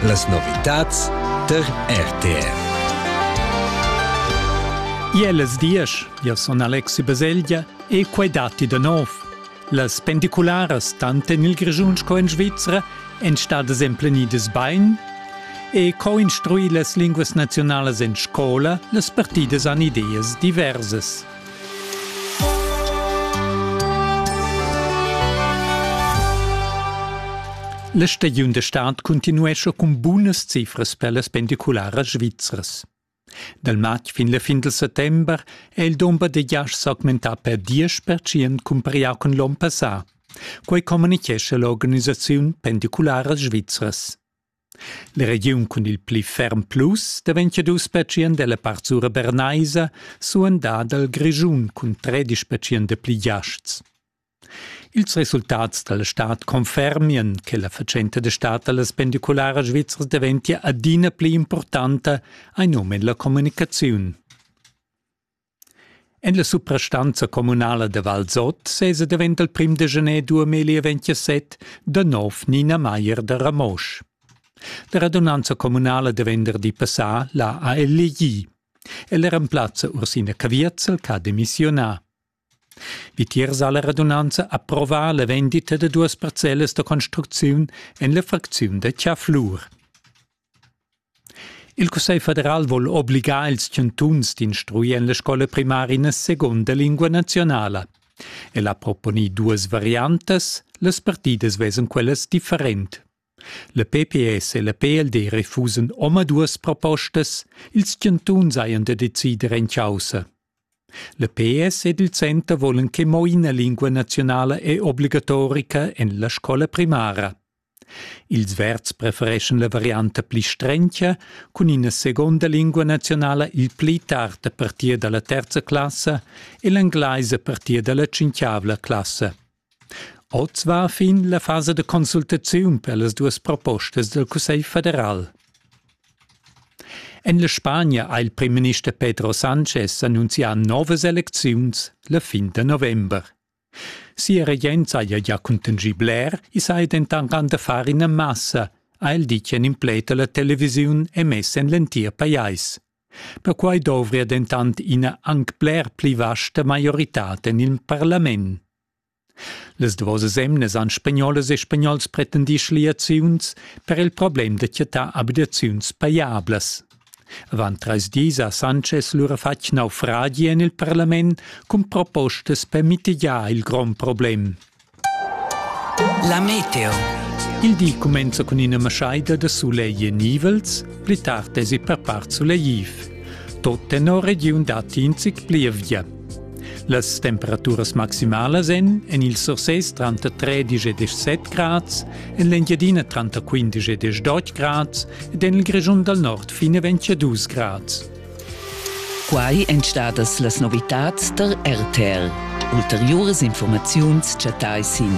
Las novitads tar RTR. Iel es diesch, io sun Alexi Baselgia e quai datti da nov. Las pendicularas tant en il Grischun sco in Svizra èn stadas emplenidas bain e co instruir las linguas nazionalas en scola las partidas han ideas diversas. La stagiun da stad cuntinuescha cun bunas cifras per las pendicularas svizras. Dal matg fin la fin del settember è il dumber da giasts s'augmentà per 10% cumparià con l'onn passà. Quai communichescha l'organisaziun Pendicularas svizras. La regiun cun il pli ferm plus daventia dus pertschient ella part sura bernaisa, suandà dal Grischun cun tredisch pertschient dapli giasts. Ils resultats dalla stad confermian che la fatschenta da stad dallas pendicularas svizzras daventia adina pli importanta, hai num en la communicaziun. En la suprastanza communala da Valsot sesa davent il prim da gener 2027 da nov Nina Maier da Ramosch. La radunanza communala da venderdi passà la ha elegì. El remplazza Ursina Cavierzel ch'ha demissionà. Vitiers ha la radunanza approvà la vendita da duas parcellas da construcziun en la fracziun da Chiaflur. Il Cussegl federal vul obligar ils chantuns d'instruir en la scola primara segunda lingua naziunala. El ha proponì duas variantas, las partidas vesan quellas different. La PPS e la PLD refusan omaduas propostas, ils chantuns hajan da decider en chaussa. La PS ed il Center volan che mo ina lingua naziunala è obligatorica en la scola primara. Ils Verds prefereschan la varianta pli strencha cun ina seconda lingua naziunala il pli tard a partir dalla terza classa e l'englaisa a partir dalla tschintavla classa. Oz va fin la fasa da consultaziun per las duas propostas dal Cussegl federal. En la Spagna ha il primminister Pedro Sanchez annunzià novas elecziuns la fin da november. Sia regenza haja gia cuntanschì bler, i saja dentant anc da far ina massa, ha el ditg en in pled a la televisiun emess en l'entir pajais. Perquai dovria dentant ina anc bler pli vasta maioritad en il parlament. Las duas emnas han spagnolas e spagnols pretendì schliaziuns per il problem da chattar abitaziuns pajablas. Avant trais dis ha Sanchez lura fatg naufragi en il parlament cun propostas per mitigiar il grond problem. La meteo. Il di cumenza cun ina maschaida da sulegl e nivels, pli tard esi per part sulegliv. Tot tenor regiun datti in zic plievgia. Las temperaturas maximalas èn en il Sursés tranter 13 e 17 grads, en l'Engiadina tranter 15 e 18 grads ed en il Grischun dal nord fin a 22 grads. Quai èn stadas las novitads tar RTL. Ulteriuras informaziuns chattai sin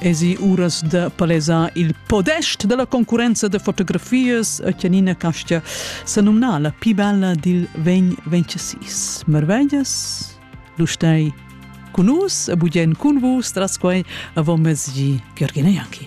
esi uras de palesar il podest della concurrenza de fotografias a Chianina Castia se nomna la più bella dil 2026. Marveglias, du stai con nus e bugen con vus tras quei avon mezgi Georgina Janki.